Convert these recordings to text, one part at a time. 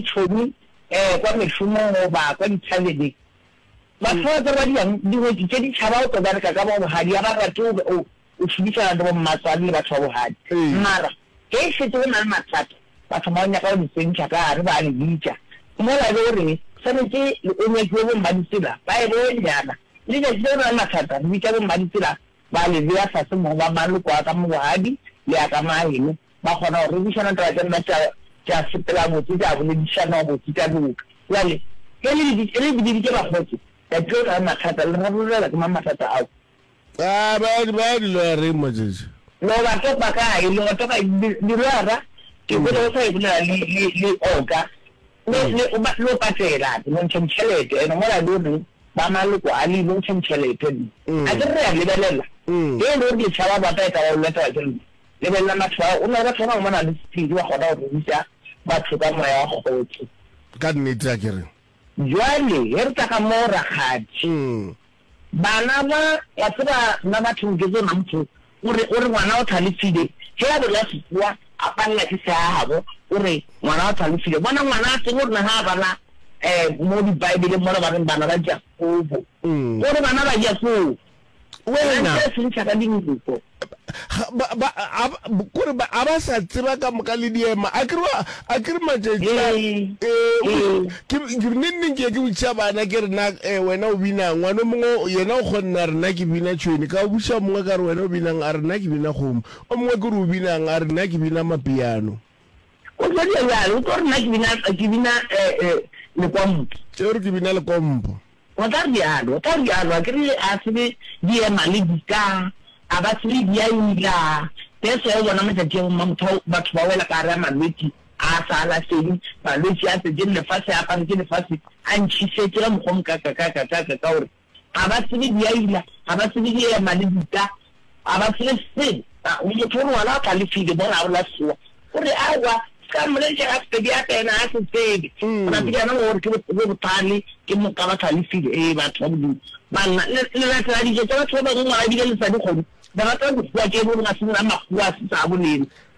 tšhomi kwa mešomong goba kwa dithabeleng. Batho ba ba tsebadiwang dingwetši tše ditšhaba o tlo bereka ka ba bogadi, ga ba rate o be o o šomišana le bommatswale le batho ba bogadi. Mara ge e šetše go na le mathata, ba thoma go nyaka go le tsentšha ka gare, ba le bitša mola e le gore swanetše o nyakiwe bommaditsela ba e bone. Bjana letšatši le go na le mathata re bitša bommaditsela Ba le bea fase mo go ba maloko a ka mo bogadi le a ka maahelo, ba kgona go rerišana taba tša lena tša, tša sepela botse, tša boledišanwa botse, tša loka. Bjale, ge le le, ge le bileditše bakgotse, la tlilo tla le mathata, le rarolelwa ke mang mathata ao? Aa, ba, ba ya diloyareng matšatši a. Lo ba topa kae? Lo ba topa, di, diloyara, ke kwele o sa e bolela le, le, le Oka, Le, le, o ba, lo patela, lo ntšheng tšhelete, eno mola lo re, ba maloko a le, lo ntšheng tšhelete nna. A ke re re a lebelela, ge e le gore lešaba ba ka e ka ba o letela ke lona, lebelela matho ao, o na le batho ba bangwe ba na le sephiri, ba kgona go ruta batho ka Moya wa Kgotso. Ka nnete, a ke re. Bjale, ge re tla ga moo, rakgadi, Bana ba, wa tseba nna batho nketso na motho o re, o re ngwana o hlalefile, ge a bolela sekgowa a palela ke se a habo, o re ngwana o hlalefile. Bona ngwana a tsebe gore na ga a bala um mo dibaebeleng mola ba reng bana ba Jakobo, o re bana ba Jakobo, wena nka e se ntšha ka dinko. ba, ba, a, kore ba, a ba sa tseba ka moka le diema a kere a kere matšatši a mm. eh, ke ke ne nne ke ke botšiša bana ke rena eh, wena o bina ngwana mongwe yena o kgonna rena ke bina tšhweni ka o botšiša mongwe ka re wena o binang a rena ke bina kgomo o mongwe ke re o binang a rena ke bina mapiano o tlo dira bjalo o tlo rena ke bina ke bina eh, eh, lekwampo ke re ke bina lekompo O ka realo, o ka realo, a ke re a se be di ema le di ka, a ba se be di a ila. That's why o bona matšatši a bo mma motho batho ba wela ka gare ga malwetši a a sa alafeng, malwetši a tletse le lefase, a aparetše lefase, a ntšhišetše ka mokgwa o mokakakakakaka ka gore ga ba se be di a ila, ga ba se be di ema le di ka, A ba tsebe selo. A, motho o rwala a galefile mo gare la sewa. O re, Aowa, se ka mmolediša ga Sepediata, yena ga a se tsebe. O na pediana go gore ke bo, bothale, ke moka ba galefile. Ee, batho ba bodutu. Banna, le, le latela dijo tša batho ba bangwe, ngwana ebile le sa di kgone. Le rata dikgowa tše e le gore ga se nna makgowa a se sa a bolena.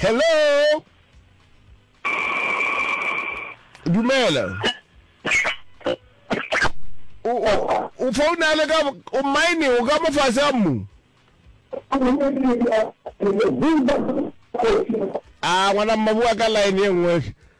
hello dumela o founa le ka o mine o ka mo fase a mmu a ngwana mma bua ka line e nngwe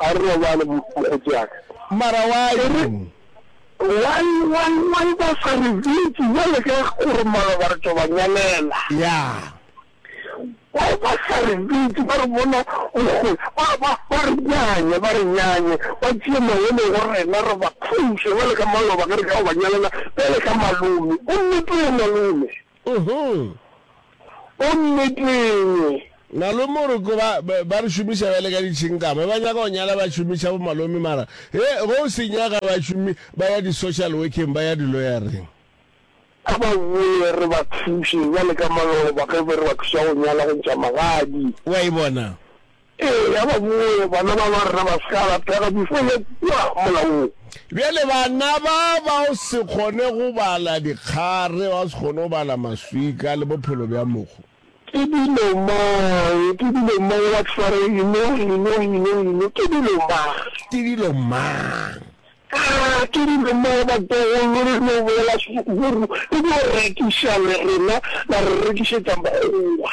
a re robale mo kgotsi ya ka. Mara why? Why why why ba sa re bitse jwale ka gore maloba re tlo ba nyalela. Yeah. Why ba sa re bitse ba re bona mokgwe ba ba ba re nyanye ba re nyanye ba tšee mangwele go rena re ba thuse jwale ka maloba ge re ka go ba nyalela bjale ka malome o nnete o malome. Gomme tee engwe. Malome o re ko ba, ba re šomiša bjale ka ditšhinkama. Ba nyaka go nyala ba šomiša bo malome mara, he, ge o se nyaka ba šomi, ba ya di-social workeng, ba ya di-lawyer-reng. A ba boe re ba thuše, bjale ka maloba ge be re ba thuša go nyala, go ntšha magadi. Wa e bona? Ee, ya ba bowe, bana ba ba rena ba se ka alapega before ya kua molaong. Bjale bana ba ba o se kgone go bala dikgare, ba o se kgone go bala maswika le bophelo bja mogo. Ke dilo mang, ke dilo mang, what fare, you know, you know, you know, you know, ke dilo mang. Ke dilo mang. Aa, ke dilo mang, batlogolo re no boela sehloko go re, re no rekiša le rena la re rekišetša Makgowa.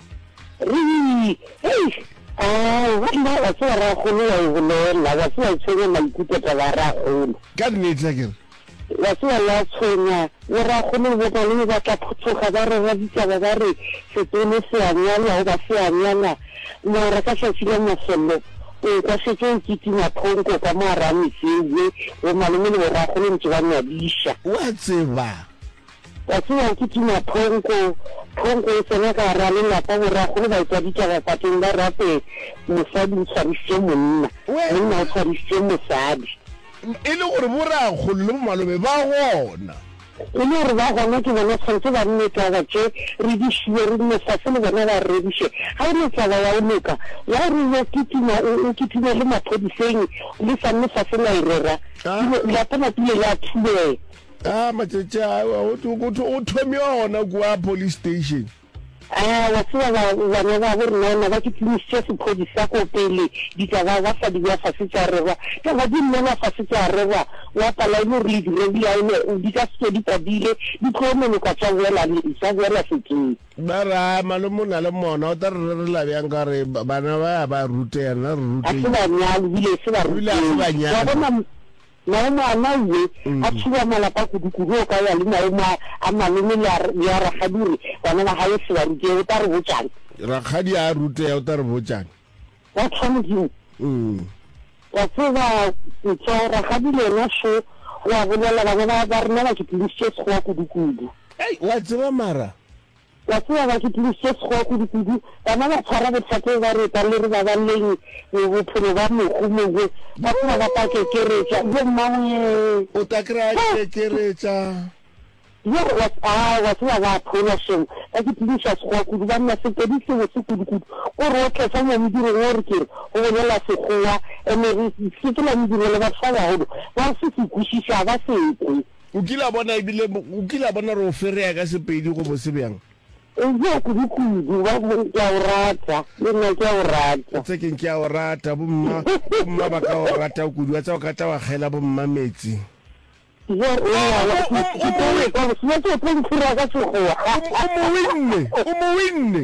Rii, Hei! Aa, nna, wa tseba, rrakgolo wa e bolela, wa tseba, e tshwenya maikutlo taba ya rrakgolo. Ka nnete, a ke re? Wa tseba, ya tshwenya, le rrakgolo le bomalome ba tla phuthoga, ba re, Raditaba ba re, Setone se a nyalwa, goba se a nyala, mara ka tšatši la mafello, o ekwa šetše o kitima phonko ka mo gare ga metse ewe, bomalome le borrakgolo ntše ba nyadiša. O a tseba, Ka tsewa ke tuma phonko, phonko e tsena ka gara lelapa, borakgolo ba etwa ditaba pateng ba rate mosadi o tshwarisitše monna, monna o tshwarisitše mosadi. E le gore borakgolo le bomalobe ba gona. E le gore ba gona ke bona tshwanetse ba nne taba tše re di šiwe re nne fase le bona ba reriše. Ga e ne taba ya go loka ya gore o yo kitima, o kitime le maphodiseng le sa nne fase la e rera, dilo, lapa la pile la thubega. Ah, matšatši a go thwe- go thwe- go thomiwa gona kua police station Ah, wa tseba ba- bana ba bo rena ona ba ke tlinisitše sephodisa ko pele ditaba ba sa di bea fase tša rerwa taba di nnela fase tša rerwa wa pala e le gore le di rerile a ene di ka seke di padile di tlo noloka tša boela le- tša boela sekeng ba re a malome o na le mona o tla re rerela bjang ka gore ba- bana ba ya ba ruteya nna re a se ruteile banyalo bile e se ba Ebile a se banyalo. wa bona Naomo a na yye a thuba malapa kudu-kudu o ka ya le Naomo a a malome le a le a rakgadi o re bana ba gae se ba rutee o ta re botšang. Rakgadi a a rutea o ta re botšang. Ba tla Modimo. Umm. Wa tseba Ntswa rakgadi le yena šo o a bolela bana ba ba rena ba ke tlodisitše sekgowa kudu-kudu. Ei wa tseba mara. Wa tseba, ba kitimi se sego kudukudu, bana ba tshwara bothate ba reta le re babaleng bophelo ba mohu mogwe, ba tseba ba ta kekeretša, yo mmaweee! O ta kry-a kekeretša. Yo, wa, a, wa tseba, ba phola šong, ba kitimiša Sekgowa kudu, ba nna sepedi sebotse kudukudu. O re o tletša mo modirong o re ke re o bolela Sekgowa, ene re sepela mediro le batho ba bagolo, ba se se kwešiše, ga ba se kwe. O kile a bona ebile o kile a bona gore o ferea ka Sepedi go bose bjang? Eja kudu kudu, ba go re ke a o rata, le nna ke a o rata. Etsa keng ke a o rata, bomma, bomma ba ka o rata kudu, wa tseba o ka tla wa kgela bomma metsi. Eja o ngwana, ke tlo o etsa bosula se o tlo nthira ka Sekgowa. O mo winne, o mo winne.